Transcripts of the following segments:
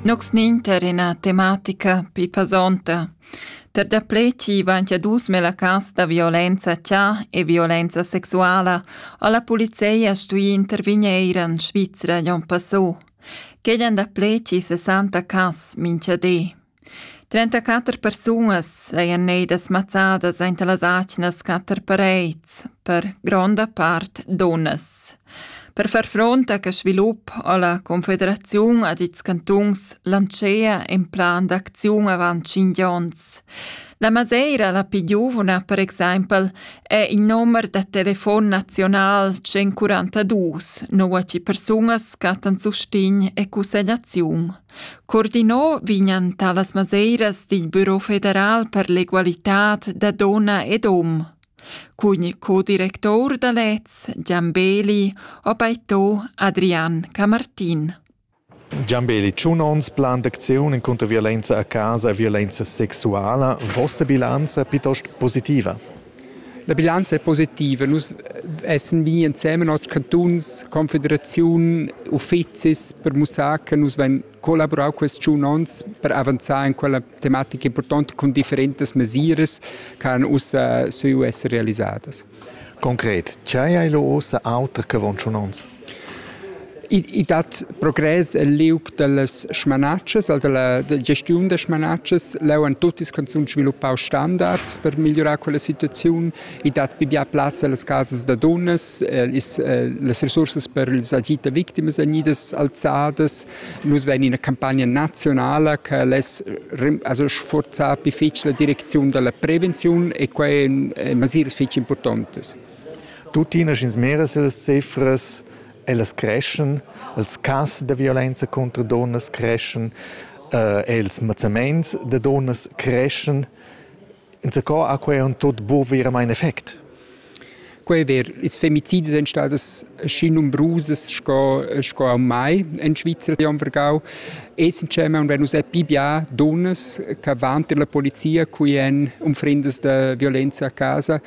Nox nin tar ina tematica pli pesonta. Per daplè chi vain cha dus melacas da violenza cha e violenza sexuala a la polizei ha stui intervigner eir in Svizra l'on passò. Quegl an daplè chi 60 cas minchadé. Trentaquatter persunas sajan gneidas mazzadas aint las atgnas quatter parets, per gronda part dunnas. Per far front a quest svilup ha la Confederaziun ad ils cantuns lantschea in plan d'acziun avant tschinch ons. La Maseira, la più giuvna per exaimpel, è in numer da telefon nazional 142, nua che persunas cattan sustign e cussegliaziun. Coordinà vegnan talas maseiras dil Büro federal per l'egualitad da donna ed hom. Cun co-director da lez Gian Beli ha beito Adrian Camartin. Gian Beli, tschun onns plan d'acziun encunter violenza a casa e violenza sexuala. Vossa bilanza piuttost positiva? La bilanza è positiva. Nus essan vegni ensemen als cantuns, confederaziun, uffizis per mussar che nus vein collaborau quest tschun onns per avanzar en quella tematica importante cun differentas mesiras che han ussa saviu esser realisadas. Concret, tgei ei lu ussa auter che avon tschun onns? I dat progress el liug dallas smanatschas, dalla gestiun da smanatschas. Leu han tuttas canzuns sviluppau standards per migliurar quella situaziun. I dat pia plazza allas casas da dunnas. Las resursas per ils agid da victimas vegnidas alzadas. Nus vein ina campagna nazionala che less also sforzar difficil la direcziun dalla prevenziun e quei ein masiras fetg impurtontas. Tuttina sch'ins mira si las cifras, ellas creschan, ils cas da violenza contro dunnas creschan, eh, ils mazzaments da dunnas creschan. Insacò ha quei un tot bu veramente effekt. Quei ver, ils femicidi sind stadas schi numerusas sco, sco am mai in Svizzera di am Vergau. Essencemen, wenn uns pibia dunnas che vanti la polizia qui en um fremdes de violenza a casa,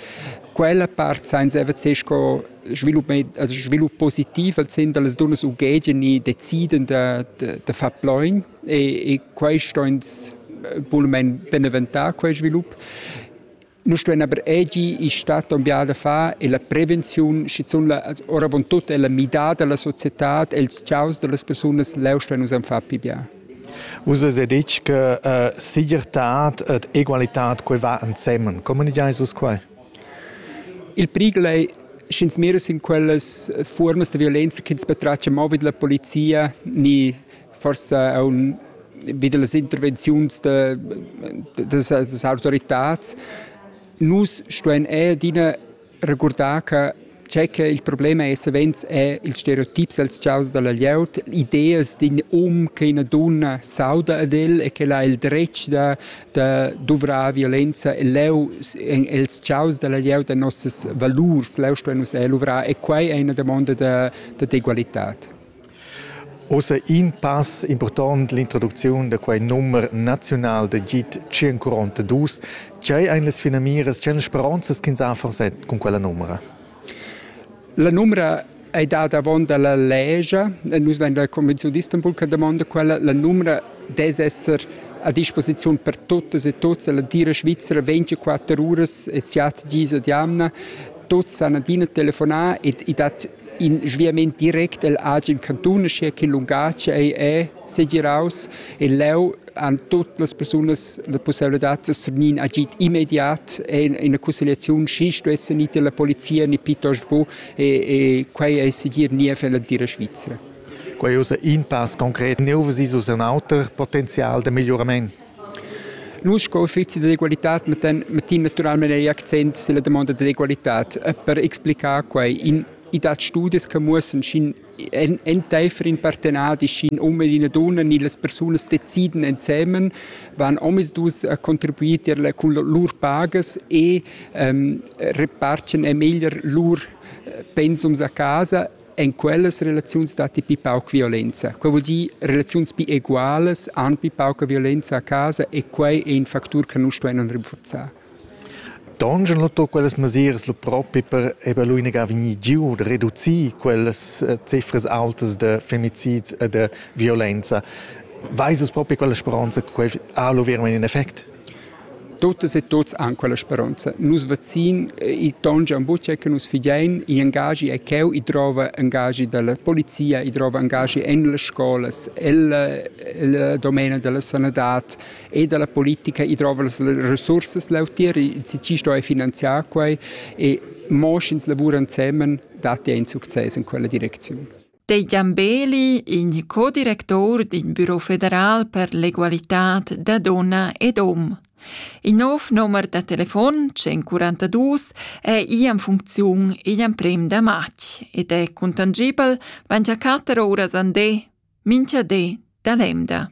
Quella part sainza EVC sco svilup, also svilup positiv als sind las dunas ughegian e deciden da, da, da far plain e, e quai sto ins bulmen beneventar quel svilup. Nous stuein aber egi in stadt un biada fa e la prevenziun, schizun la, ora von tut è la midada della società, els ciaus delle persone leu stuein us an far pi bia. Vus ves detg che uh, segirtad ed egualitad quei va ensemen. Communicheis vus quei? Il prigel è sch'ins mira in quelles formas di violenza che ins betraccia mo vid la polizia, ni forse a un vid las intervenzioni de, de, des autoritats, nus stuen adina regurdar che tge che il problem è savens è ils stereotips als chaus dalla glieud, ideas d'in um che ina dunna sauda ad el e che ha il dretg da, da duvrar violenza e leu els chaus dalla glieud e nossas valurs, leu stuein nus luvrar e quai è una damonda da, da d'egualitad. Ussa in pass impurtont l'introducziun da quei numer naziunal da git 142. Tgei ein las finamiras, tgei speronzas ch'ins ha forse cun quella numera? La numera ei dada avon dalla legia e nus vein la Convenziun d'Istanbul che damonda quella. La numera dess esser a disposiziun per tutas e tuts. La tira svizzera 24 uras e siat dis ad jamna. Tuts han adina telefonà e, e dat In sviament direct el agen cantun, uschia che lungatg ei è segiraus e leu han tut las persunas la possibilitad da svenir agid immediat en ina conciliazione sch'i stuesse nicht la polizia ni piuttosto bu e, e quei ei segir niev en la tira svizra. Quei ussa in pass concret neu vesi sus un auter potenzial de migliorament. Nus sco uffezi d'egualitad mettan, mettin naturalmein ei accent silla damonda d'egualitad e per explicar quei in i dat studias che muossan sc'in enteifer in partenadi sc'in um ed ina dunna ni las persunas deciden ensemen van omisdus a contribuir tier la, cun lur pagas e ähm, repartgen ei meglier lur äh, pensums a casa En quellas relaziuns datti pi pauc violenza. Quai vuol dir relaziuns pi egualas han pi pauca violenza a casa e quai è in factur che nus stuevan rinforzar. Dongen lotto quellas mesiras lu propi per eba lu inaga vegni giu de reducir quellas eh, cifras altas de femicids e de violenza. Weiss es propi quella speranza che quei ha lu vero in effect? Tuttas e tuts han quella speronza. Nus vacin, i tongia en butia che nus fidein, i engagi è cheu, i drova engagi dalla polizia, i drova engagi en las scolas, el domena della sanadad e della politica, i drova las resursas lautier, si ci sto finanziar quei e mo sch'ins lavura ensemen, dat ei in success in quella direczione. Deigliambeli, in codirector d'in büro federal per l'egualitad da dunna ed hom. Il nov nomer da telefon 142 è ì en funcziun igl emprem da matg ed è contangibel 24 uras andé, mincha dé da l'emda.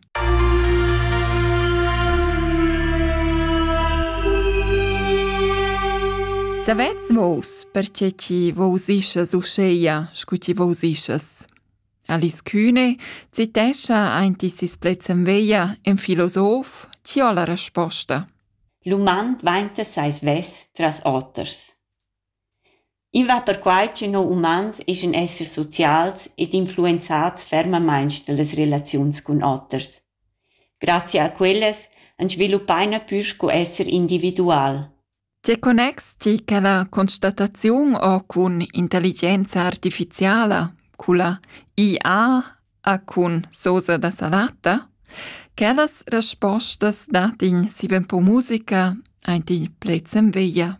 Savets vos, perche chi vos ischas uscheia, scu chi vos ischas? Alice Kühne citescha ainti sis pletzen veia en filosof, ci ho la resposta. L'uman dvainta seis vess tras oters. I va perquai che no umans eschan esser socials ed influenzats fermamaing da las relaziuns cun oters. Grazia a quellas ans sviluppaina pür sco esser individual. Tge connex ti cun la constataziun o cun intelligenza artificiala, culla IA a cun sosa da salata? Quellas respostas dat in siven po musica aint in pled sem veglia.